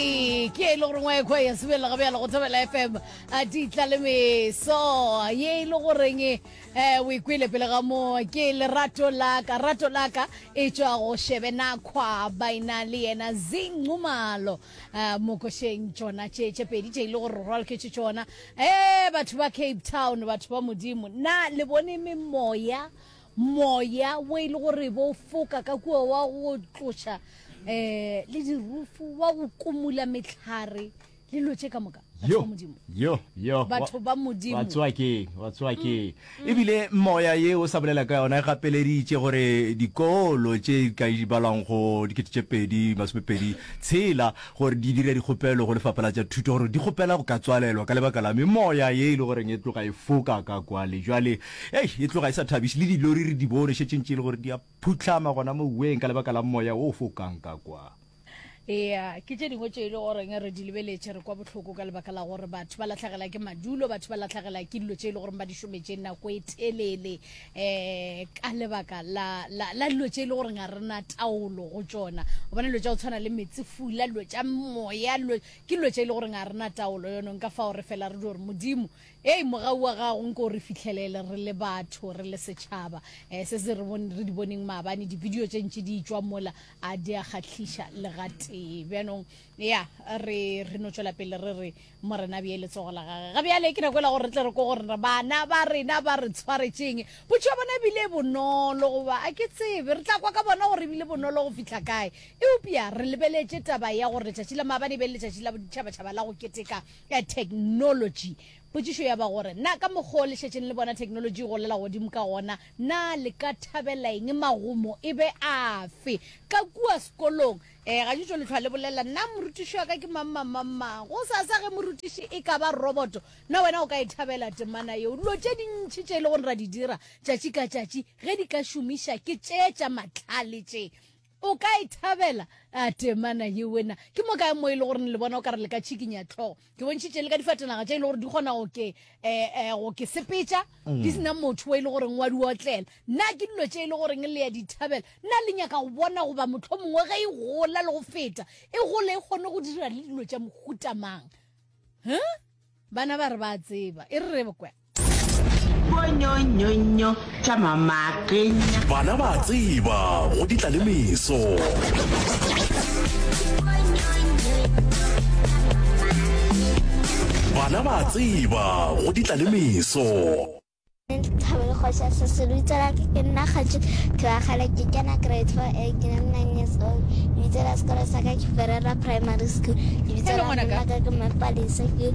Ee, ke e le gore ngwa ekgwa ya sebelela ga bjalo go thobela fm a di tla le meso ye e le goreng um o ikwele pele ga mo ke lerato laka rato laka e tšwa go shebe na kgwa baina le yena zingcumalo um mokošeng tšona tše tše pedi tše e le gore re rwalketše tšona um batho ba cape town batho ba modimo na le bone memoya Moya wo e le gore bo foka ka kua wa go tloša um le dirufu wa go kumula metlhare le lo tše ka moka yo yo yo batho ba modimo wa tsoa ke wa tsoa ke mm. e bile moya ye o sa bolela ka yona e gapeleditše gore dikolo tše ka ibalwang go dikete tše pedi masome pedi tshela gore di dire dikgopelo go lefapha la tša thuto gore di kgopela go ka tswalelwa ka lebaka la memoya ye e le goreng e tloga e foka ka kwale jwale Hei, e tloga e sa thabiše, le dilori re di bone šetše ntše e le gore di a phuhlama gona moweng ka lebaka la moya o fokang ka kwa. Eya, ke tše dingwe tše e le goreng re di lebeletše, re kwa bohloko ka lebaka la gore batho ba lahlagela ke madulo, batho ba lahlagela ke dilo tše e le goreng ba di šometše nako e telele um ka lebaka la, la, la dilo tše e le goreng ga re na taolo go tšona. O bona dilo tša go tshwana le metsi, fula, dilo tša moya, dilo, ke dilo tše e le goreng ga re na taolo yonong ka fao re fela re di gore Modimo Hei, mogau wa gago, nko o re fihlelele, re le batho, re le setšhaba. Eh, se se re, bon, re di boneng maabane, dibidio tše ntši di tšwa mola, a di a kgahliša le gatee. Bjanong, ya, re, re no tšwela pele re re, Morena a bee letsogo la Gage. Ga bjale, ke nako yela gore re tle re kwe gore na bana ba rena ba re tshwaretše'ng. Potšo ya bona e bile e bonolo, goba, a ke tsebe, re tla kwa ka bona gore e bile bonolo go fihla kae. Eupša re lebeletše taba ya gore letšatši la maabane e be e le letšatši la boditšhabatšhaba la go keteka ka theknolotši. Potšišo ya ba gore, Na ka mokgwa o le šetšeng le bona theknolotši e golela godimo ka gona, na le ka thabela eng? Magumo e be afe ka kua sekolong? Ee, gantši o le hlwa le bolela, Na morutiši wa ka ke mang-mang-mang-mang? Gosasa ge morutiši e ka ba roboto, na wena o ka e thabela temana yeo? Dilo tše dintši tše e lego gore ra di dira tšatši ka tšatši ge di ka šomiša ke tše tša mahlale tše, O ka e thabela? A temana yewe na ke mo kae mo e le gore le bona o ka re le ka tšhikinya tlhogo? Ke bontšhitše le ka difatanaga tše e le gore di kgona go ke eh, eh, go ke sepetša di mm. sena motho wa e le goreng wa di otlela. Nna ke dilo tše e le goreng le ya di thabela. Nna le nyaka go bona goba motlho mongwe ge e gola le go feta e gole e kgone go dira le dilo tša mohutamang. Huh? Bana ba re ba tseba. E re re kwa. bonyonyonyo tša mamakenya bana ba tseba go ditla le meso bana ba tseba go ditla le meso thabele kgoša se se rutsela ke ke nna kgatši thebagale ke kena grade four a ke na nine years old lebitso la sekolo sa ka ke ferera primary school lebitso la mma ka ke mapalese ke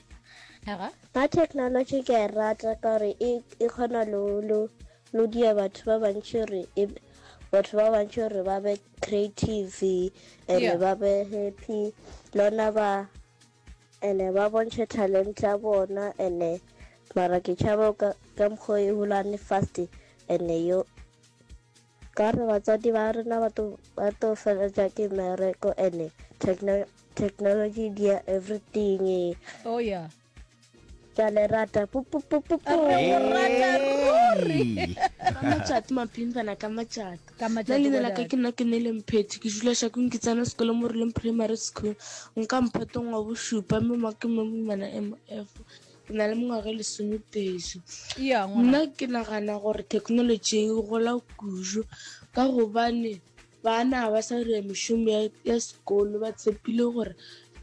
Na technology ke a e rata ka gore e, e kgona lo, lo, lo dia batho ba bantši gore e, batho ba bantši gore ba be creative ene yeah. ba be happy lona ba ene ba bontšhe talent ya bona ene mara ke tšhaba ka, ka mokgwa e hulane fast ene yo Ka re batswadi ba rena ba to ba to feletša ke mereko and techno, technology dia everything oh yeah ke a le rata matšato mapimpana ka matšato Ka matšato, nna leina la ka ke nna ke nele mphethe ke dula shakong ke tsena sekolo mo releng primary school nka mphetong wa bošupa mme ma ke mo moimana mf ke na le mengwaga e lesomepedi nna ke nagana gore technology e gola kudu ka gobane bana ba sa dira mešomo ya sekolo ba tshepile gore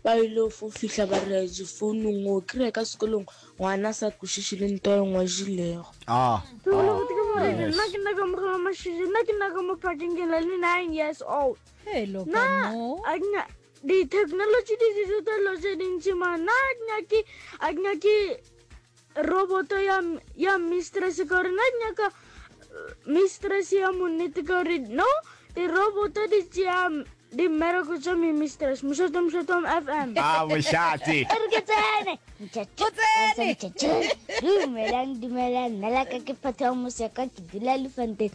ba ile fo fitlha ba dira difounung o kry-e ka sekolong ngwana sa kwešiše le nto e ngwadilego ah, ah, nna ke nna ka moga wa mašiši nna ke nna ka mo phakeng ke na le nine years old nna Ditheknolotši di tliša dilo tše dintši mara nna a ke nyake a ke nyake roboto ya ya mistress ka gore nna ke nyaka mistress ya monnete ka gore no diroboto di tšea dimmereko tša me mistress mošate mošate wa fm a bošate a re ke tsene o tsene dumelang dumelang nna la ka ke phatha wa moseka ke dula lefanteng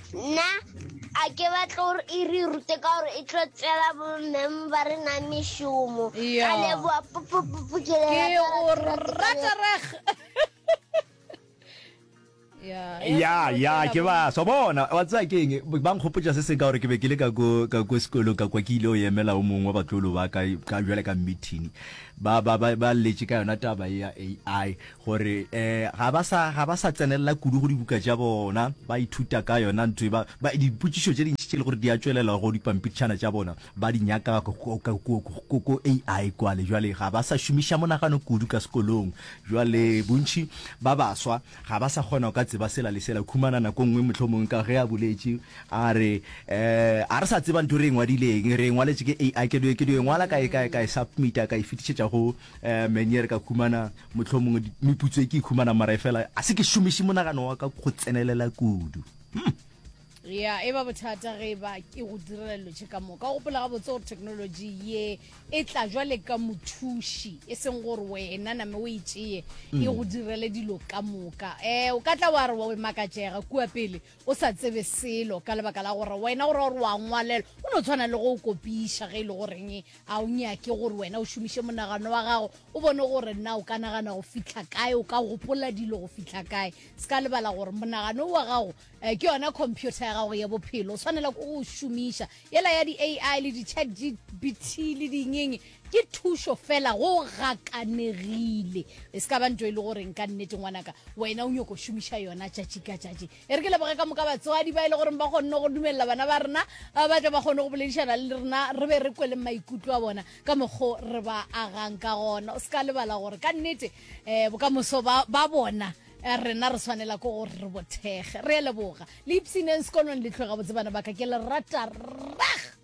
Nna a ke batla gore e re rute ka gore e tlo tsela bommeng ba re na mešomo ka leboa pupupupu ke leratareg ya ya ke ba so bona wa tsaya ke eng ba nkgopotsa se se ka gore ke be ke le ka ko ka ko sekolo ka kwa ke ile o emela o mongwe wa batlolo ba ka ka jwale ka meeting ba ba ba ba letse ka yona taba ya AI gore eh ga ba sa ga ba sa tsenelela kudu go dibuka tša bona ba ithuta ka yona ntho e ba ba- dipotšišo tše dintši tše le gore di a tšwelela go dipampitšhana tša bona ba di nyaka ko- ko- ko- ko- ko- ko ko ai kwale jwale ga ba sa šomiša monagano kudu ka sekolong jwale bontšhi ba baswa ga ba sa kgona go ka tseba sela le sela khumana nako nngwe motlho mongwe ka ge a boletše a re eh a re sa tseba ntho re e ngwadileng re e ngwaletše ke ai ke do ke do e ngwala ka e ka e- ka e submita ka e fetišetša go eh menyere ka khumana Mohlomongwe meputso e ke ikhumanang mara e fela a se ke šomiše monagano wa ka go tsenelela kudu. Hmm. ya e ba bothata ge e ba ke go direla dilo tše ka moka o gopola gabotse gore technology ye e tla jwale ka mothuši e seng gore wena name o e tšeye e mm. go direle dilo ka moka um o ka tla wa re wa makatšega kua pele o sa tsebe selo ka lebaka la gore wena o ra gore wa ngwalelwa o no tshwana le go o kopiša ge e le goreng a o nyake gore wena o šomiše monagano wa gago o bone gore nna o ka nagana go fitlha kae o ka gopola dilo go fitlha kae se ka lebala gore monagano wa gago um ke yona computer ya gago ya bophelo o tshwanela ko o šomiša Yela ya di-AI le di-chatgpt le dingeng ke thušo fela, go gakanegile. E se ka ba nto e le goreng ka nnete ngwanaka wena o nyoko šomiša yona tšatši ka tšatši. E re ke leboge ka moka batswadi ba e le goreng ba kgonne go dumelela bana ba rena ba tle ba kgone go boledišana le rena, re be re kweleng maikutlo a bona ka mokgo re ba agang ka gona. O se ka lebala gore ka nnete um bokamoso ba bona Eh, rena re tshwanela ko gore re bothege re leboga le ipsineng sekolong le tloga botse bana baka ke le rata rag